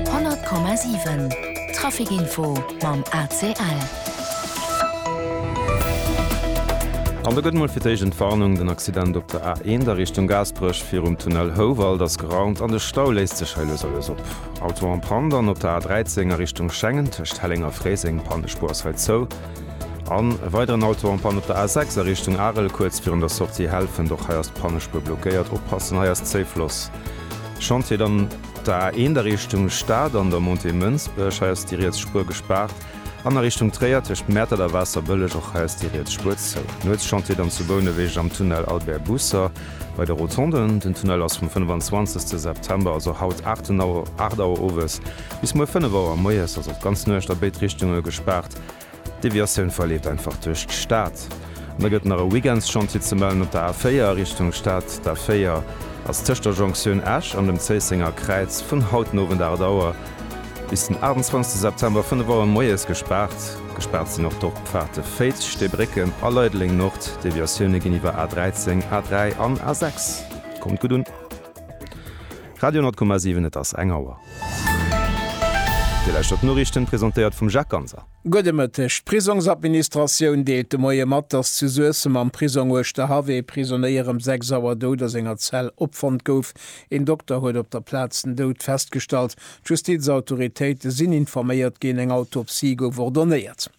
100,7 Trafic Info mam ACL. An do gëtt mol fir d'éischt Entwarnung, den Accident op der A1 a Richtung Gaasperech virum Tunnel Houwald ass geraumt an de Stau léisst sech hei lues a lues op. Auto en panne dann op der A13 a Richtung Schengen tëscht Helleng a Fréiseng, Pannespuer ass hei zou. An e weideren Auto en panne op der A6 a Richtung Arel kuerz virun der Sortie Helfent, och hei ass d'Pannespuer blockéiert, oppassen hei ass zéi Floss. Chantier an der A 1 a Richtung Stad an der Montée Mënsbech, hei ass déi riets Spuer gespaart, an a Richtung Tréier tëscht Mäertert a Waasserbëlleg, och hei ass déi riets Spuer zou. Nuetschantier dann zu Bouneweg am Tunnel Albert Busser bei de Rotonden. Den Tunnel ass vum 25 September, also haut 8 Auer owes, bis muer 5 Auer moies, also d'ganz Nuecht a béid Richtunge gespaart. D'Deviatioun verleeft einfach duerch d'Stad. An da gëtt nach e Weekendschantier ze mellen op der A4 Richtung Stad. D'A4 ass tëscht der Jonktioun Esch an dem Zéissenger Kräiz vun haut den Owend 8 Auer bis den 28 September 5 Auer moies gespaart. Gespaart sinn och d'Dorpfaarte Féiz, Steebrécken a Leideleng-Nord. D'Deviatioune ginn iwwer A13, A3 an A6. Kommt gutt un! Radio 10,7 Et ass eng Auer. Dir lauschtert d'Noriichten, presentéiert vum Jacques Ganser. Gudde Mëtteg. D'Prisongsadministratioun deelt de Moie mat, dass zu Suessem am Prisong Uerschterhaff ee Prisonéier ëm 6 Auer dout a senger Zell opfonnt gouf. Een Dokter huet op der Plaz den Doud festgestallt. D'Justizautoritéite sinn informéiert ginn, eng Autopsie gouf ordonéiert.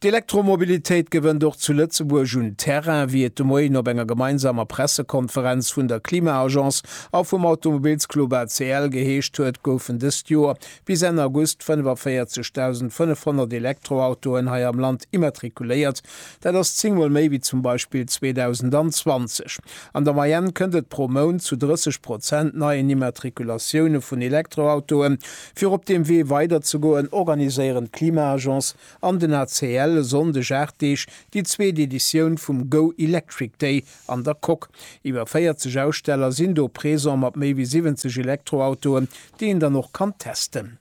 D'Elektromobilitéit gewënnt och zu Lëtzebuerg un Terrain, wéi et de Moien op enger gemeinsamer Pressekonferenz vun der Klima-Agence a vum Automobilsclub ACL geheescht huet, goufen dëst Joer bis Enn August 45.500 Elektroautoen hei am Land immatrikuléiert. Dat ass zéng Mol méi wéi zum Beispill 2020. An der Moyenne kënnt et pro Mount zu 30 Prozent neien Immatrikulatioune vun Elektroautoen. Fir op deem Wee weiderzegoen, organiséieren d'Klima-Agence an den ACL e Sonndeg 8 Deeg déi zweet Editioun vum Go Electric Day an der Coque. Iwwer 40 Aussteller sinn do présent mat méi wéi 70 Elektroautoen, déi een dann och kann testen.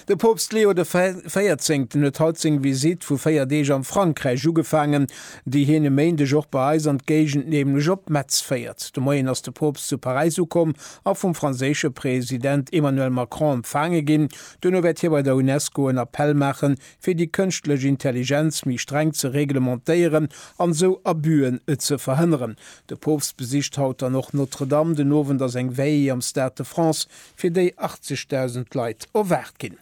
De Poopst Leo de Véierzéngten huet haut seng Visitt vu 4 Deeg am Frankräich ugefaangen. déi hien e Méindeg och bei eis an d'Géigend, nämlech op Metz féiert. De Moien ass de Poopst zu Paräis ukomm a vum franséische President Emmanuel Macron empfaange ginn. Duerno wäert hie bei der UNESCO en Appell maache fir déi kënschtlech Intelligenz méi streng ze reglementéieren an esou Abus'en ze verhënneren. De Poopst besicht haut dann och Notre-Dame. Den Owend ass eng Veillée am Stade de France, fir déi 80.000 Leit erwaart ginn.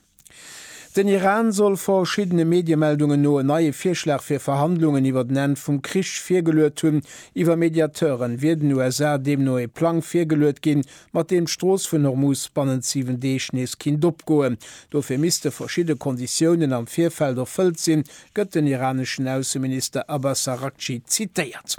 Den Iran soll verschiddene Mediemeldungen no en neie Virschlag fir Verhandlungen iwwer den Enn vum Krich virgeluet hunn. Iwwer Mediateuren wier den USA deemno ee Plang virgeluet ginn, mat deem d'Strooss vun Hormuz bannent 7 Deeg nees kinnt opgoen. Dofir misste verschidde Konditiounen am Virfeld erfëllt sinn, gëtt den iraneschen Ausseminister Abbas Araghchi zitéiert.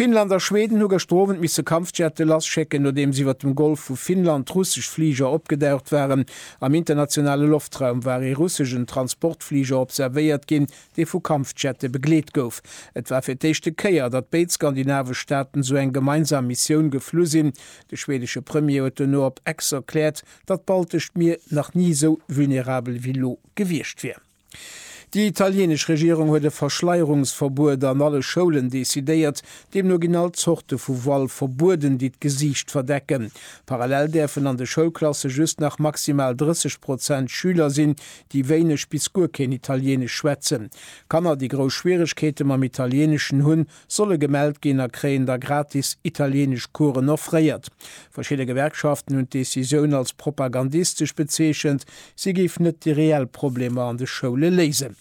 Finnland a Schweden hu gëschter Owend misse Kampfjette lasschécken, nodeems iwwert dem Golf vu Finnland russesch Fliger opgedaucht waren. Am internationale Loftraum war ee russeschen Transportfliger observéiert ginn, dee vu Kampfjette begleet gouf. Et war fir d'éischte Kéier, datt béid skandinavesch Staaten esou eng gemeinsam Missioun geflu sinn. De schwedesche Premier huet dono op Ex erkläert, datt d'Baltescht Mier nach ni esou vulnerabel wéi lo gewiescht wier. Déi italienesch Regierung huet e Verschleierungsverbuet an alle Schoulen decidéiert. Deemno ginn all Zorte vu Voile verbueden, déi d'Gesiicht verdecken. Parallel däerfen an de Schoulklasse just nach maximal 30 Prozent Schüler sinn, déi wéineg bis guer keen Italieenesch schwätzen. Kanner, déi grouss Schwieregkeete mam Italieneschen hunn, solle gemellt ginn a kréien da gratis italienesch Coursen offréiert. Verschidde Gewerkschaften hunn d'Decisioun als propagandistesch bezeechent, si géif net déi reell Problemer an de Schoule léisen.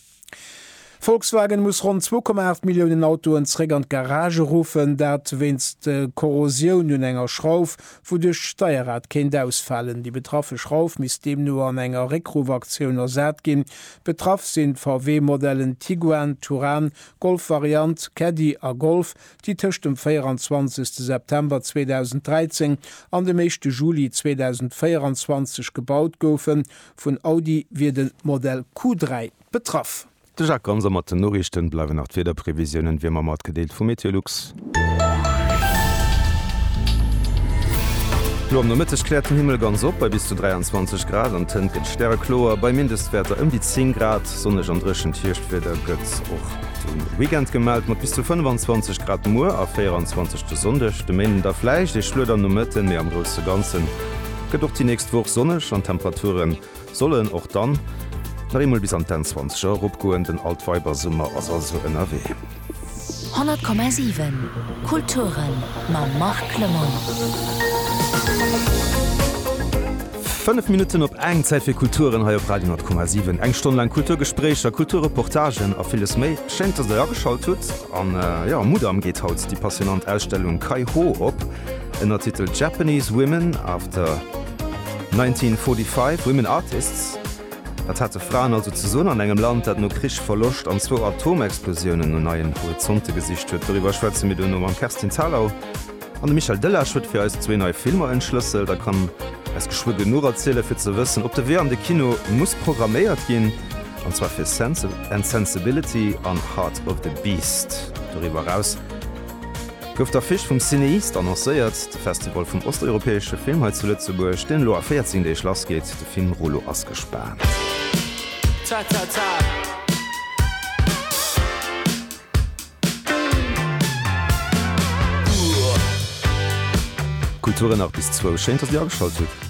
Volkswagen muss ronn 2,8 Milliounen Autoen zeréck an d'Garage ruffen, dat wéinst Korrosioun un enger Schrauf, wouduerch d'Steierrad kéint ausfalen. Déi betraffe Schrauf misst deemno an enger Réckruff-Aktioun ersat ginn. Betraff sinn d'VW-Modellen Tiguan, Touran Golfvariant, Caddy a Golf, déi tëscht dem 24 September 2013 an dem éischte Juli 2024 gebaut goufen. Vun Audi wier de Modell Q3 betraff. De Jacques Ganser mat den Noriichten. Bleiwen nach d'Wiederprevisiounen, wéi ëmmer matgedeelt vum Meteolux. Lo am Nomëtteg kläert den Himmel ganz op bei bis zu 23 Grad an d'Hënt gëtt stärekloer bei Mindestwäerter ëm déi 10 Grad. Sonneg an dréchent Hierschtwieder gëtt och de Weekend gemellt mat bis zu 25 Grad muer a 24 de Sonndeg. De Méinden da vläicht ee Schluet am Nomëtten, mee am grousse Ganze gëtt och déi nächst Woch sonneg an d'Temperature Soll en och dann nach eemol bis an d'Enn Zwanzeger eropgoen, den Altweibersummer ass also ënnerwee. 100,7 Kulturen mam Marc Clement. Fënnef Minutten op eng, Zäit fir Kulturen hei op Radio 10,7. Eng Stonn laang Kulturgespréicher, Kulturreportagen a villes méi. Schéin, dass Der ageschalt hutt. An jo, Mudam geet haut déi passionnant Ausstellung Kai Ho op ënner Titel Japanese Women after. 1945, Women Artists, Wat hate Fraen also ze soen an engem Land, dat no Krich, Verloscht an zwou Atomexplosiounen no neien Horizonte gesicht huet? Doriwwer schwätze mir duerno mam Kerstin Thalau. An de Michel Delage huet fir eis zwee nei Filmer entschlësselt a kann eis geschwë genuch erzielen, fir ze wëssen, ob de Wee an de Kino muss programméiert ginn, an zwar fir Sense and Sensibility an Heart of the Beast. Doriwwer eraus. Gouf d'Affiche vum Cinéiste annoncéiert, de Festival vum osteuropäesche Film hei zu Lëtzebuerg, deen elo a 14 Deeg lass geet. De Film Rulo ass gespaant. Kultur nach bis zwou, schéin dass dir ageschalt hutt.